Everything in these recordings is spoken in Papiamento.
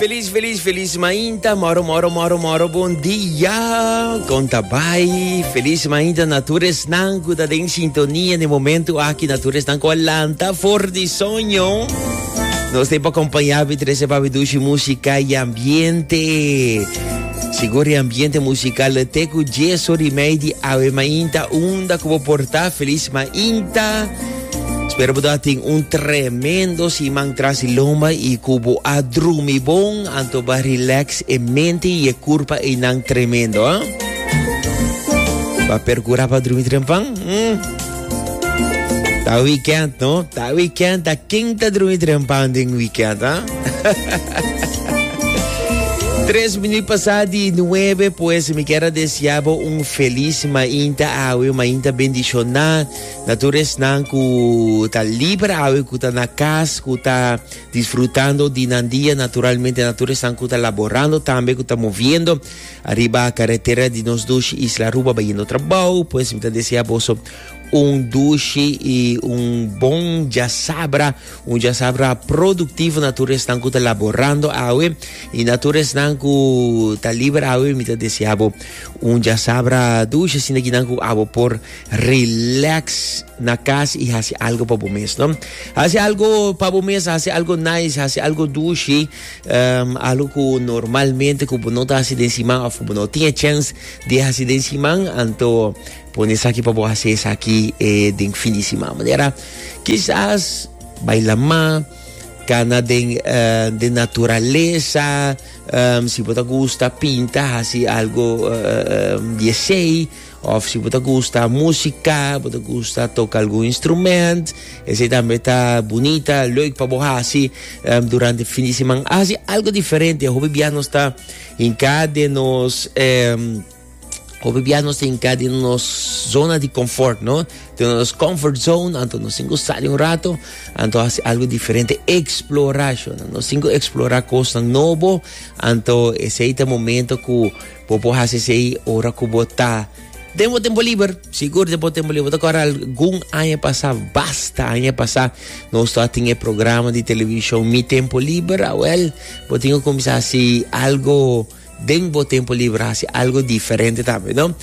Feliz, feliz, feliz mainta. Moro, moro, moro, moro. Bon dia. Conta bai. Feliz mainta na toeres nan cu ta den sintonia en el momento aquí na toeres nan cu lanta for di soño. Nos te pa acompañar vi trece pa vidushi música y ambiente. Seguro y ambiente musical te cu yeso remedy ave mainta unda como porta feliz mainta. Spero bo ta tin un tremendo siman tras di lomba y cu bo a drumi bon, anto ba relax e mente y e curpa einan tremendo, ah? Ba percura pa drumi trempan? Mm. Ta weekend, no? Ta weekend, ta king ta drumi trempan din weekend, ah? Tres minutos pasado di nueve, pues me quiero desear un feliz mainta awe, mainta bendicional. Na tur esnan ku ta liber awe, ku ta na kas, ku ta disfrutando di nan dia, naturalmente na tur esnan ku ta laborando tambe, ku ta moviendo ariba karetera di nos dushi Isla Aruba bayendo trabou, pues mi ta desea boso un dushi i un bon jasabra, un jasabra produktivo na tur esnan ku ta laborando awe, i na tur esnan ku ta liber awe mi ta desea bo un jasabra dushi, asinal kinan ku abo por Relax na cas y haci algo pa bo mes, no? Haci algo pa bo mes, haci algo nice, haci algo dushi, um, algo cu normalmente cu bo no ta haci den siman of cu bo no tin e chens di haci den siman, anto pone esaki pa bo haci esaki eh, den fin di siman. Manera, kisas baila ma, cana den, uh, den naturalesa, um, si bo ta gusta pinta, haci algo, uh, um, di esey, Of si bo ta gusta músika, bo ta gusta toka algun instrument, esei tambe ta bunita, leuk pa bo hasi um, durante fin di siman. Hasi algo diferente. Hopi bia nos ta hinka den nos... Um, hopi bia nos ta hinka den nos zona di confort, no? Den nos comfort zone, anto nos sin sali un rato, anto hasi algo diferente. Explora, shona. Nos sin explora cosnan nobo, anto esei ta momento cu Bo por hasi esei ora ku bo ta den bo tempu liber. Sigur den bo tempu liber. Bo ta kòrda algun aña pasá, basta aña pasá, nos tabata tin e programa di televishon Mi Tempu Liber. Awèl, bo tin ku kuminsá hasi algu den bo tempu liber, hasi algu diferente tambe, no?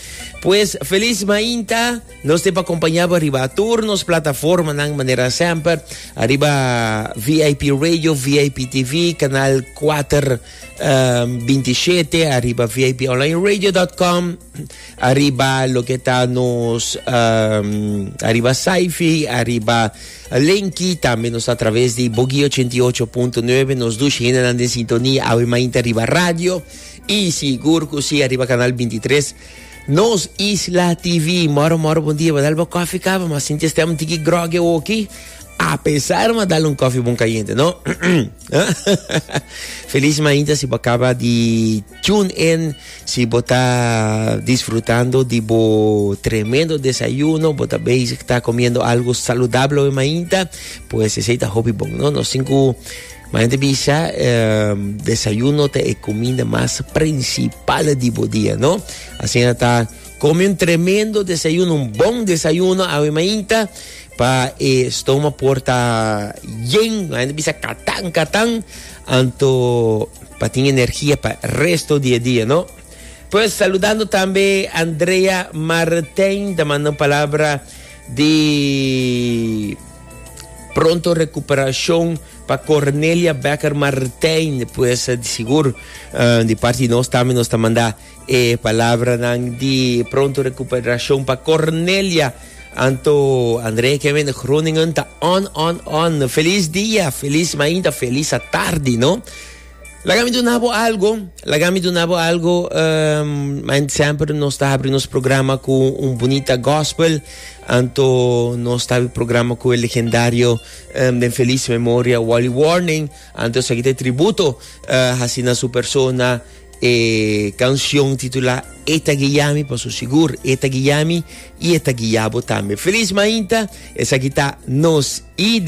Pues, felis mainta. Nos tin pa kompañá bo riba tur nos plataformanan manera semper, ariba VIP Radio, VIP TV, kanal kuater. 27 arriba vibonlineradio.com arriba lo que está nos um, arriba Saifi arriba Lenki también nos a través de Bogi 88.9 nos dos hinenan de sintonía awe mainta arriba radio y sigur que sí arriba canal 23 nos Isla TV moro moro buen día badal bo coffee cava mas sinti stem tiki grogue oki a pesar ma dal un coffee bon caliente no Feliz mainta si bo acaba di tune in, si bo ta disfrutando di bo tremendo desayuno, bo ta bezig ta comiendo algo saludable hoy mainta, pues ese ta hopi bon, no? Nos cinco mainta bisa eh, desayuno ta e comida mas principal di bo dia, no? Así ta Come un tremendo desayuno, un bon desayuno awe mainta pa e stoma por ta yen, no hay na bisa katan katan, anto pa tin energia pa resto di e dia, no? Pues saludando tambe Andrea Martijn, ta manda un palabra di pronto recuperacion pa Cornelia Becker Martijn, pues di sigur eh, di parti di nos tambe nos ta manda E palabranan di pronto recuperashon pa Cornelia, Anto, André, Kevin, Groningen ta on, on, on. Feliz dia, feliz mainta, feliz a tardi, no? Laga mi duna bo algo, laga mi duna bo algo, um, man sempre nos ta abri nos programa cu un bonita gospel, anto nos ta abri programa cu el legendario um, den feliz memoria Wally Warning, anto sa ki te tributo uh, hasi na su persona, E canción titulá E ta guiami pa su sigur E ta guiami y e ta guia bo tambe. Feliz mainta, esaki ta nos ID.